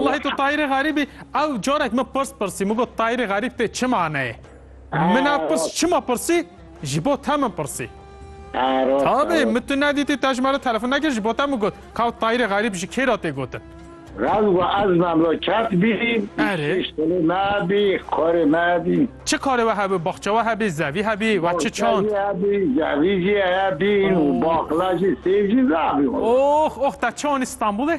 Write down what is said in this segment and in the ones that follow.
Wellahî tu Tahîrê Xerîbî ew carek min pirs pirsî min got Tahîrê Xerîb tê çi maneyê? Min ev pirs çima pirsî ji bo te min pirsî. Tabî min tu nedîtî te ji me re telefon nekir ji bo te min got ka Tahîrê Xerîb ji kê re tê gotin. Raz got ez memleket bî şêş telê me bî karê me bî. Çi karê we hebû baxçe we hebî zevî hebî we çi çand. Baxçe jî hebî zevî jî hebîn û baxla jî sêv jî zebî. Ox ox te çi anî Stenbolê?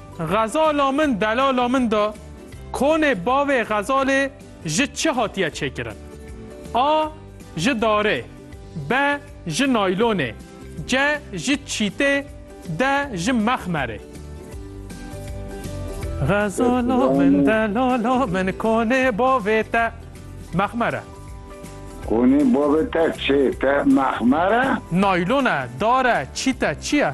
Xezala min delala min da, konê bavê xezalê ji çi hatiye çêkirin? A. Ji darê B. Ji naylonê C. Ji çîtê D. Ji mexmerê Xezala min delala min konê bavê te mexmer e. Konê bavê te çê te mexmer e? Naylon e, dar e, çît e, çi ye?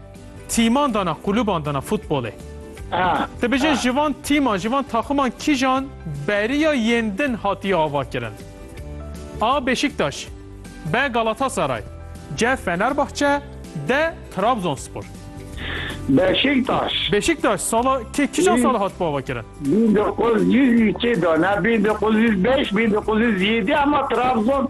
Tîman dana quluban dana futbolê. Te bijî ji van tîman, ji van taximan kîjan beriya yên din hatiye avakirin? A. Beşiktaş B. Galatasaray C. Fenerbahçe D. Trabzonspor. Beşiktaş. Beşiktaş sala kê kîjan sala hatibû avakirin? Bin dokuz yüz îkê dana, bin dokuz yüz beş, bin dokuz yüz yedî ama Trabzon